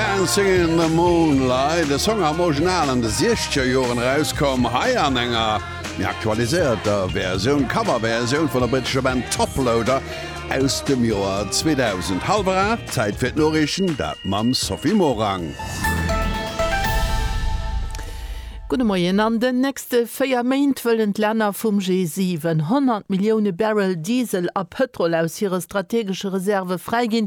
Dancing in the Moonlight, de Song am Original an de siechzeger Joren erauskomm, hei an enger méi aktualiséierter Versioun, Coverversioun vun der brittescher Band Top Loader aus dem Joer 2000. Hallwer 8, Zäit fir d'Noriichten, dat mam Sophie Morang. Gudde Moien. An den nächste véier Méint wëllen d'Länner vum G7 100 Millioune Barrel Diesel a Pëtrol aus hire strategesche Reserve fräiginn,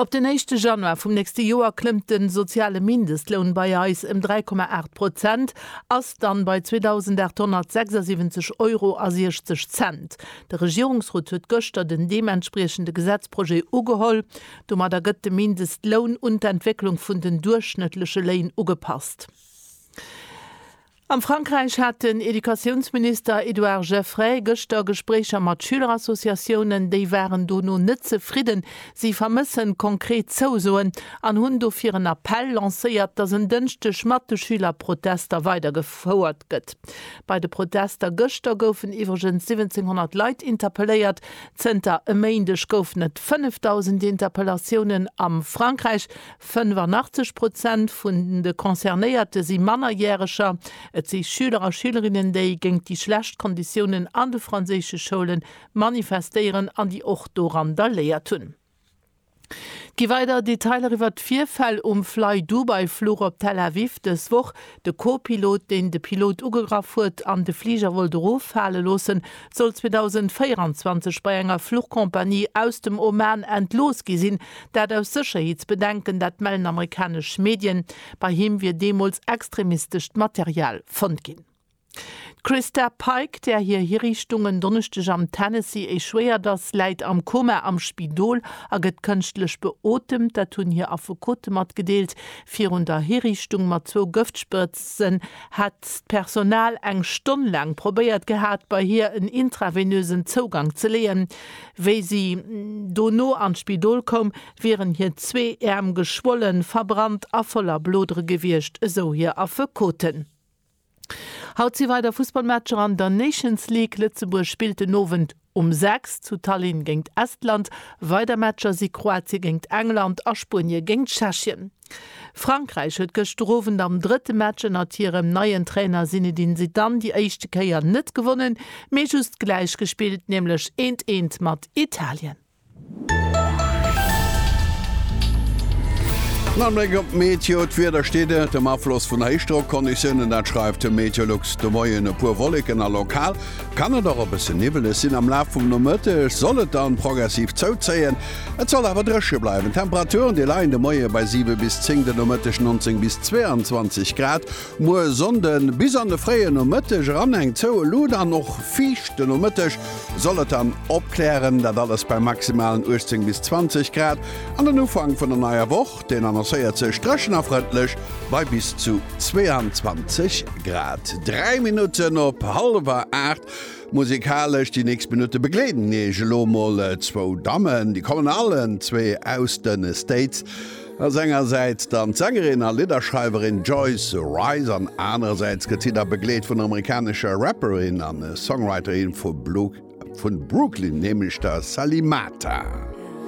Op den éischte Januar vum nächste Joer klëmmt de soziale Mindestloun bei eis ëm 3,8 Prozent, ass dann bei 2.876 Euro a 60 Cent. De Regierungsrot huet gëschter den deementspriechende Gesetzprojet ugeholl. Domadder gëtt de Mindestloun un d'Entwécklung vun den duerchschnëttleche Léin ugepasst. Am Frankräich hat den Educatiounsminister Edouard Geffray gëschter Gespréicher mat Schülerassociatiounen. Déi waren dono net zefridden. Si vermëssen konkret Zousoen an hunn dofir en Appell lancéiert, datt en Dënschdeg mat de Schülerprotester weidergefouert gëtt. Bei de Protester gëschter goufen iwwregens 1.700 Leit interpelléiert. Zënter e Méindeg goufen et 5.000 Interpellatiounen a Frankräich. 85 Prozent vun de Concernéierte si Mannerjäreger. Et si Schüler a Schülerinnen, déi géingt déi schlecht Konditiounen an de franséische Schoule manifestéieren an déi och do randaléiert hunn. Gi weider Detailer iwwert d'Virfäll um Flydubai-Fluch op Tel Aviv dës Woch, De Co-Pilot, deen de Pilot ugegraff huet an de Fliger wollt eroffale loossen, soll 2024 bei enger Fluchcompagnie aus dem Oman entlooss gi sinn. Dat aus Sécherheetsbedenken, dat mellen amerikanesch Medien. Bei him wier deemools extremistescht Material fonnt ginn. D'Christa Pike, där hir Hiriichtung en Donneschdeg am Tennessee échouéiert ass, läit am Koma am Spidol a gëtt kënschtlech beotemt. Dat hunn hir Affekote matgedeelt. Virun der Hiriichtung mat zwou Gëftsprëtzen hätt d'Personal eng Stonn laang probéiert gehat, bei hir en intravenösen Zougang ze leeën. Wéi si dono an d'Spidol koum, wieren hir zwee Äerm geschwollen, verbrannt a voller Blodere gewiescht, esou hir Affekoten. Haut si weider Fussballmatcher an der Nations League. Lëtzebuerg spillt den Owend um 6 zu Tallinn géingt Estland. Weider Matcher si Kroatie géingt England a Spuenie géingt Tschechien. Frankräich huet gëschter Owend am drëtte Match ënnert hirem neien Trainer Zinedine Zidane déi éischte Kéier net gewonnen, mee just gläich gespillt, nämlech eent, eent mat Italien. Nach en Bléck op d'Meteo, D'Wieder steet ënnertem Afloss vun Héichdrockconditiounen, dat schreift de Meteolux. De Moien e puer Wolleken a lokal kann et och e bësse niwweleg sinn. Am Laf vum Nomëtteg soll et dann progressiv zouzéien, et soll awer dréche bleiwen. D'Temperaturen, déi leien de Moie bei 7 bis 10, de Nomëtteg 19 bis 22 Grad. Muer Sonnde bis an de fréie Nomëtteg eran eng zoue Luut an och fiicht. De Nomëtteg soll et dann opklären, dat alles bei maximalen 18 bis 20 Grad. An den Ufank vun der neier Woch, deen annoncéiert sech dréchen a frëndlech bei bis zu 22 Grad. 3 Minutten op hallwer 8. Musikalesch déi nächst Minutte begleeden iech elo mol zwou Dammen. Déi kommen allen zwee aus de States. Ass engersäits dann d'Sängerin a Lidderschreiwerin Joyce Wrice an anerersäits gëtt si da begleet vun der amerikanescher Rapperin an Songwriterin vu Brooklyn, nämlech der Salimata.